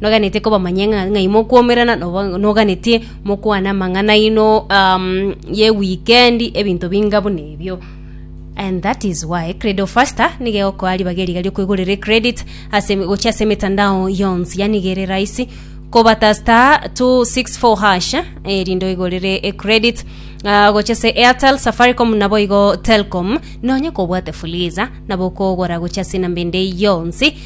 Noganetie kobamanyia ng'a ng'ai mokwoumerana, noba- noganetie mokwane amang'ana aino um, ye wikendi, ebinto binga buna ebio. And that is why Credo Faster niga egokoa ribaga eri iga riokoigorera ecredit ase gochia ase emetandao yonsi, yaani iga ere rahisi kobata star 264 hash erinde oigorere ecredit ah, gochia ase Airtel, Safaricom naboigo Telcom, nonye kobwate Fuliza nabo okogora gochia ase enamba ende yonsi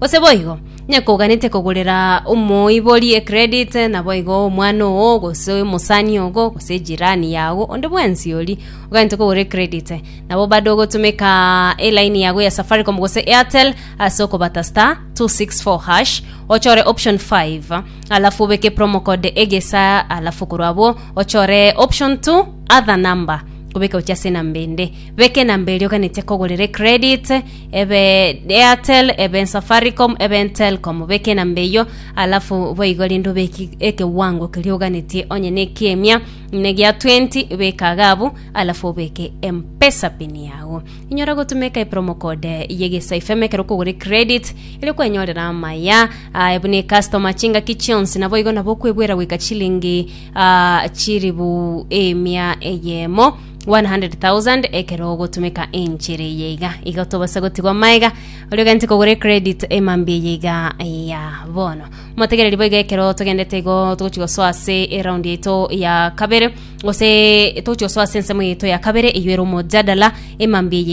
Gose boigo, onye koganete kogorera omoibori ecredit, naboigo omwana oo, gose omosani ogo, gose ejirani yago, onde bwensi oria oganete kogora ecredit, nabo bade ogotumeka elaini yago ya Safaricom gose Airtel ase okobata star 264 hash, ochore option 5, alafu obeke promo code egesa, alafu korwa abwo ochore option 2 other number, kobeka gochia ase enamba ende. Beka enamba eria oganete kogorera ecredit, Ebe Airtel, ebe Safaricom, ebe Telcom, beke enamba eyio, alafu boigo rende obeke ekewango keria oganetie onye na ekiemia ne gia 20 beka iga abwo, alafu obeke empesa pin yago. Inyora gotumeka epromo code ye Gesa FM ekero okogora credit ere kwenyorera amaya ah, buna ecustomer chingaki chionsi naboigo nabo okwebwera goika chilingi ah, chiribu emia eyemo 100,000 ekero ogotumeka enchera eye iga igo tobase gotigwa maega oria ogente kogora ecredit emambia eye iga ya bono motegereri boiga ekero togendete igo togochi gosoa ase eround yaito ya kabere gose togochi gosoa ase ensemo yaito ya kabere eywo ere omojadala emambia eye